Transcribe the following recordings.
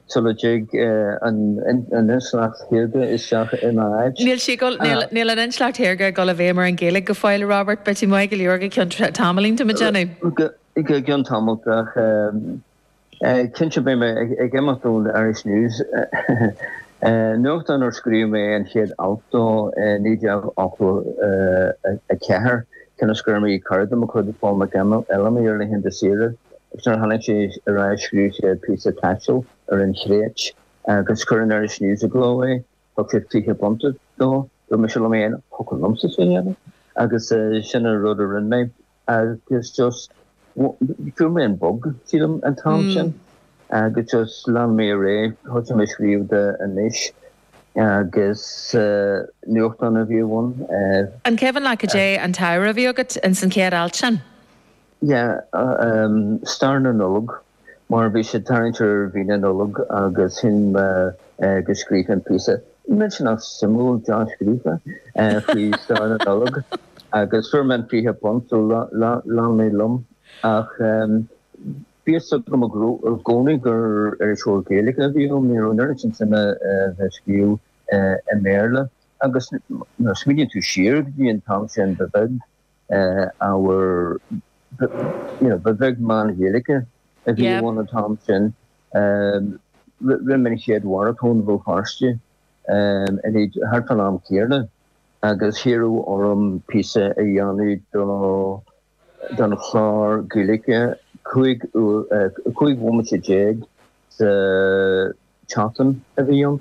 sula dtig an intleacht shaorga isteach ina áit. Níl sí ag dul, níl an intleacht shaorga ag dul i bhfeidhm ar an Ghaeilge go fóill, a Robert, beidh tú maith go leor go ceann tamaillín, tá mé ag déanamh. Go ceann tamaill ach cinnte beidh mé ag imeacht ón Irish News, nuachtán ar scríobh mé an chéad alt dó i 1984, cionn is go raibh mé ag cur de mo chuid Paul McElhammy ar laethanta saoire. Is nuair a tháinig sé ar ais scríobh sé píosa taistil ar an Chréit agus chuir an Irish News i gcló é. Thug sé fiche punt dó. Dúirt mise liom féin, thiocfadh liomsa sin a dhéanamh agus sin an rud a rinne mé agus just fuair mé an bug, sílim, an t-am sin agus just lean mé ar aghaidh. Thosaigh mé ag scríobh do Anois agus nuachtán a bhí ann. An cuimhin leat caidé an t-ábhar a bhí agat insan chéad alt sin? Sea, stair na Nollag, mar bhí sé ag tarraingt ar mhí na Nollag agus chinn mé go scríobhfainn píosa millteanach suimiúil dea-scríofa faoi stair na Nollag agus fuair mé an fiche punt so lean mé liom ach bhí fhios agam i gcónaí gur iriseoir Gaeilge a bheadh ionam, ní raibh an oiread sin suime bheith scríobh i mBéarla agus nuair a smaoiníonn tú siar go dtí an t-am sin ba bheag. ábhar ba bheag meán Gaeilge a bhí ann an t-am sin. Rinne mé an chéad mharatón i mBéal Feirste thart fán am céanna agus hiarradh orm píosa a dhéanamh don chlár Gaeilge 15 bhomaite sa tseachtain a bhí ann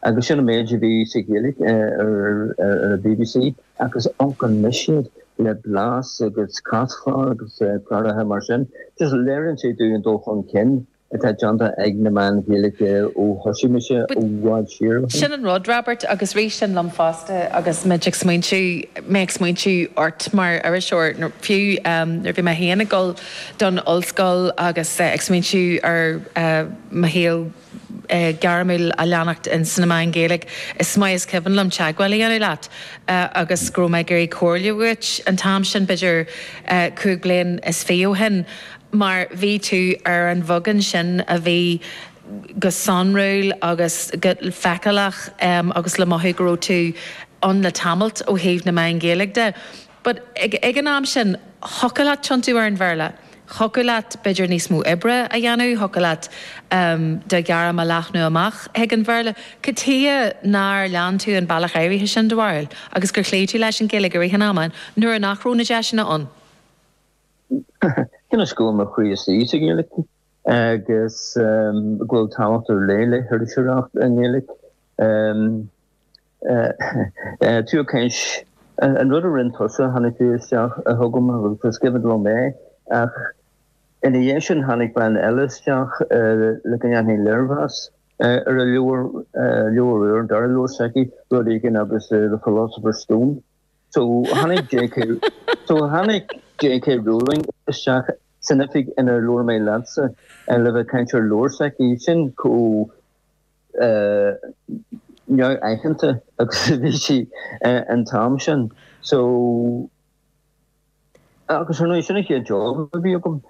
agus sin an méid a bhí sa Ghaeilge ar an bbc agus amharc anois air le Blas agus Caschlár agus cláracha mar sin. Just léiríonn sé dúinn an dul chun cinn atá déanta ag na meáin Ghaeilge ó thosaigh mise i bhfad siar ó shin. Sin an rud, Robert, agus rith sin liom fosta agus muid ag smaointiú, mé ag smaointiú ort mar iriseoir, fiú nuair a bhí mé féin ag dul, don Ollscoil agus ag smaointiú ar mo shaol gairmiúil a leanacht ins na meáin Ghaeilge, is maith is cuimhin liom teagmháil a dhéanamh leat agus go raibh mé ag iarraidh comhairle uait an t-am sin, b'fhéidir cúig bliain is fiche ó shin, mar bhí tú ar an bheagán sin a bhí go sonrúil agus go feiceálach agus le mothú go raibh tú ann le tamallt ó thaobh na meáin Ghaeilge de. But ag an am sin, thiocfadh leat tiontú ar an Bhéarla, thiocfadh leat b'fhéidir níos mó oibre a dhéanamh, thiocfadh leat do ghairm a leathnú amach chuig an Bhéarla. Cad chuige nár lean tú an bealach áirithe sin, do bharúil, agus gur chloígh tú leis an Ghaeilge i rith an ama nuair nach raibh na deiseanna ann? Cionn is go bhfuil mo chroí istigh sa Ghaeilge, agus go bhfuil tábhacht ar leith le hiriseoireacht i nGaeilge. Tú ag caint, an rud a rinn tusa, tháinig tú isteach chugam agus sciobad liom é, ach ina dhiaidh sin tháinig bean eile isteach le go ndéanfainn léirmheas ar a leabhar, leabhar úr, an dara leabhar s'aici, rud éigin agus The Philosopher's Stone. So tháinig J.K. so tháinig J.K. Rowling isteach san oifig inar labhair mé leatsa le bheith ag caint ar leabhar s'aici. Sin chomh. neamhaitheanta agus a bhí sí an t-am sin. So, agus ar ndóigh sin an chéad job a bhí agam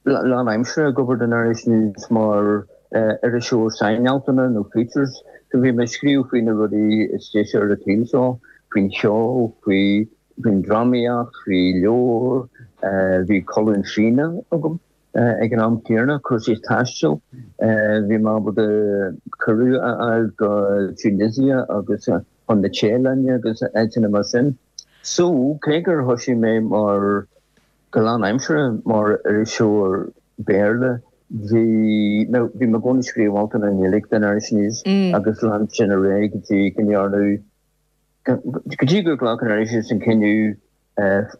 lán aimsire ag obair don Irish News mar iriseoir sainaltanna nó features. So bhí mé ag scríobh faoi na rudaí is deise ar an tsaol seo, faoin cheol, faoin drámaíocht, faoi leabhair, bhí colún fíona agam. Ag an am céanna, cúrsaí taistil, bhí mé ábalta cuireadh a fháil go Tunisia agus chun na Téalainne agus áiteanna mar sin. So, cé gur thoisigh mé mar, go lánaimseartha, mar iriseoir Béarla, bhí mé, bhí mé i gcónaí ag scríobh altanna i nGaeilge don Irish News agus lean sin ar aghaidh go dtí go ndearnadh, go dtí gur ghlac an Irish News an cinneadh,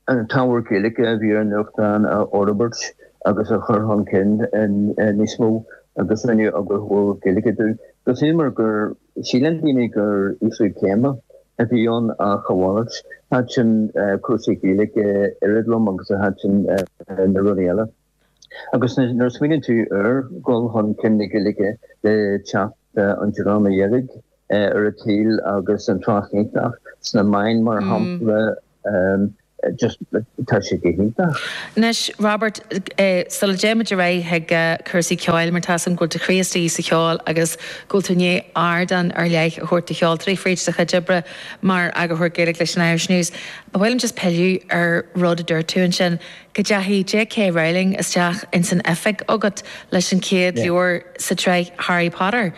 an t-ábhar Gaeilge a bhí ar an nuachtán a fhorbairt agus a chur chun cinn níos mó agus rinneadh eagarthóir Gaeilge díom. Agus sílim gur shíl a lán daoine gur ísliú céime a bhí ann ach a mhalairt, thaitin cúrsaí Gaeilge oiread liom agus a thaitin na rudaí eile. Agus nuair a smaoiníonn tú ar dhul chun cinn na Gaeilge le teacht an Dreama Dheirg ar an tsaol agus an trácht iontach sna meáin mar shampla, just tá sé go hiontach. Anois, Robert, sula dtéimid ar aghaidh chuig cúrsaí ceoil, mar tá a fhios agam go bhfuil do chroí istigh sa cheol agus go bhfuil tú i ndiaidh ardán ar leith a thabhairt do cheoltóirí fríd do chuid oibre mar eagarthóir Gaeilge leis an Irish News, ba mhaith liom just pilleadh ar rud a dúirt tú ansin. Go dteachaidh J. K. Rowling isteach ins an oifig agat leis an chéad leabhar sa tsraith Harry Potter.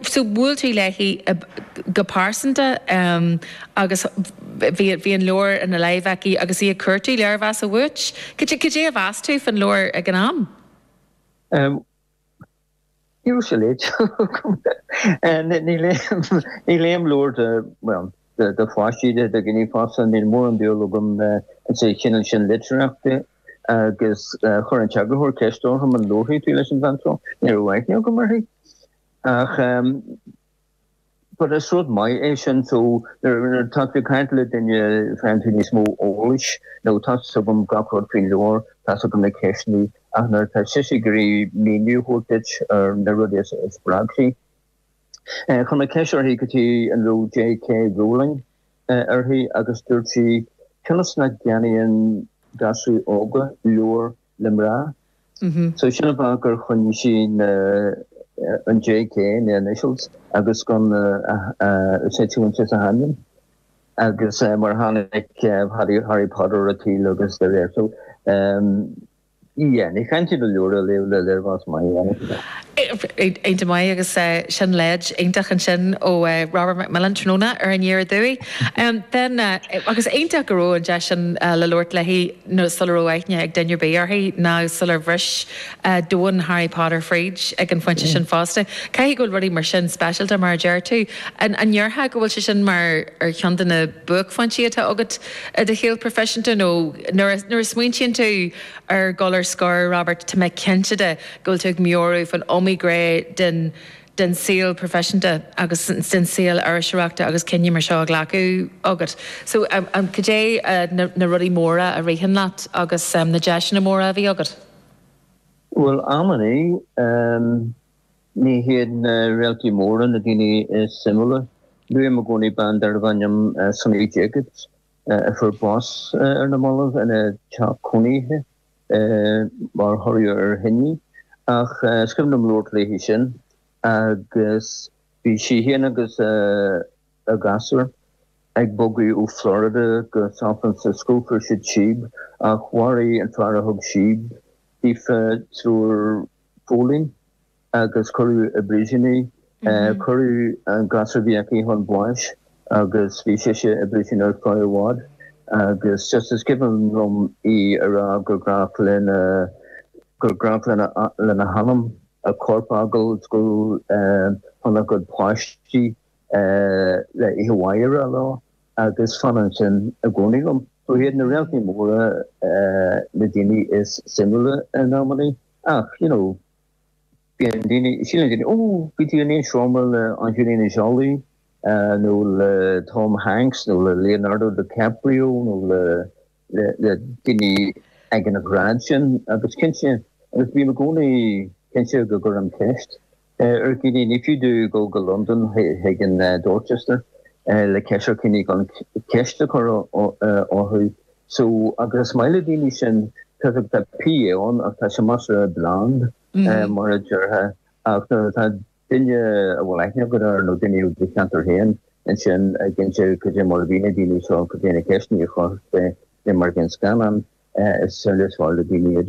So bhuail tú léi go pearsanta agus bhí an leabhar ina láimh aici agus í ag cuartú léirmheasa uait. Cad é a mheas tú fán leabhar ag an am? raibh sé léite agam, níl aon leabhar de, bhuel, de pháistí, de dhaoine fásta, níl mórán dúil agam sa chineál sin litearthachta agus chuir an t-eagarthóir ceist orm an labharfaidh tú leis an bhean seo. Ní raibh aithne agam uirthi ach but is rud maith é sin so nuair atá tú ag caint le duine faigheann tú níos mó eolais nó tá's agam gach rud faoin leabhar, tá's agam na ceisteannaí ach nuair atá sise ag iarraidh míniú a thabhairt duit ar na rudaí a spreag í. Chuir mé ceist uirthi cad chuige a raibh JK Rowling uirthi agus dúirt sí cionn is nach gceannaíonn gasúir óga leabhair le mná. So sin an fáth gur choinnigh sí na, an JK, na initials, agus gan is é Joanne a hainm. Agus mar a tháinig Harry, Harry Potter ar an tsaol agus de réir, so yeah, ní chaitheann tú an leabhar a léamh le léirmheas maith a dhéanamh. Iontach maith agus sin leid iontach ansin ó Robert McMillen tráthnóna ar an aer ar ndóigh. Ben, agus iontach go raibh an deis sin le labhairt léi. nó sula raibh aithne ag duine ar bith uirthi, nó sular bhris domhan Harry Potter fríd ag an phointe sin fosta. Caithfidh go bhfuil rudaí mar sin speisialta, mar a deir tú. An ndéarfá go bhfuil sé sin mar ar cheann de na buaicphointí atá agat i do shaol proifisiúnta nó nuair a, nuair a smaointíonn tú ar dhul ar scor, Robert, tá mé cinnte de go bhfuil tú ag meabhrú faoin iomaí gné den, den saol proifisiúnta agus den saol iriseoireachta agus cinneadh mar seo a ghlacadh agat. So, cad é na rudaí móra a ritheann leat agus na deiseanna móra a bhí agat? Bhuel, amannaí, ní hiad na réaltaí móra na daoine is suimiúla. Luaim i gcónaí bean darbh ainm Sunny Jacobs, a fuair bás ar na mallaibh ina teach cónaithe. mar thoradh ar thine, ach is cuimhin liom labhairt léi sin agus bhí sí fhéin agus a gasúr ag bogadh ó Florida go San Francisco, fuair siad síob ach mharaigh an fear a thug síob daofa triúr póilín. agus cuireadh i bpríosún í. Cuireadh an gasúr a bhí aici chun báis agus bhí sise i bpríosún ar feadh i bhfad agus just is cuimhin liom í ag rá gur, gur ghnách lena hanam a corp a fhágáil is gabháil chun a cuid páistí le oíche mhaith a rá leo agus fanann sin i gcónaí liom. So chan iad na réaltaí móra na daoine is suimiúla in amannaí ach, you know, Bíonn daoine, síleann daoine, Ó, bhí tú in aon seomra le Angelina Jolie nó le Tom Hanks nó le Leonardo DiCaprio nó le daoine ag an ghrád sin agus cinnte, agus bím i gcónaí cinnte go gcuirim ceist ar dhaoine, ní fiú domh dul go Londain chuig an Dorchester le ceist gan ceist a chur orthu. So agus is maith le daoine sin tá's agat, tá PR ann ach tá sé measartha bland mar a déarfá ach nuair atá duine a bhfuil aithne agat air nó duine ó do cheantar féin ansin ag inse cad é mar a bhí na daoine seo cad é na ceisteanna a chuir sé mar a bhí an scannán is amhlaidh is fearr le daoine iad.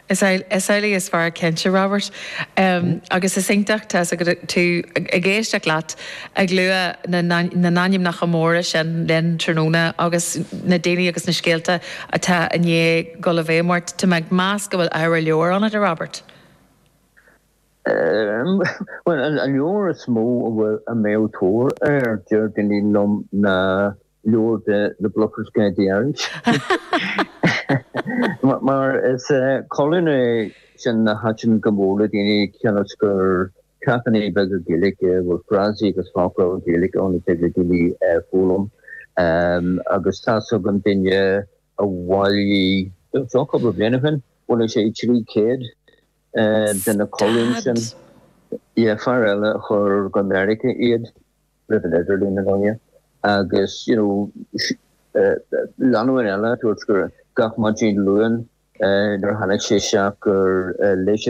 Is amhlaidh is fearr cinnte, Robert, agus is iontach tá's agat ag éisteacht leat ag lua na n-ainmneacha móra sin linn tráthnóna agus na daoine agus na scéalta atá i ndiaidh dul i bhfeidhm ort. Tá mé ag meas go bhfuil ábhar leabhair ionat, a Robert. Bhuel, an leabhar is mó a bhfuil, a mbeadh tóir air, dar liom ná leabhar de na Bluffer's Guide to Irish mar is colún é sin a thaitin go mór le daoine cionn is gur ceachtanna beaga Gaeilge é a bhfuil frásaí agus focla Gaeilge ann a dtig le daoine foghlaim agus tá's agam duine a bhailigh seo cúpla bliana ó shin bhailigh sé 300 de na colúin sin is fear eile a chuir go Meiriceá iad roimh an idirlíon ar ndóigh agus you know lánúin eile a dúirt gur gach maidin Luain nuair a tháinig sé isteach gur léigh siad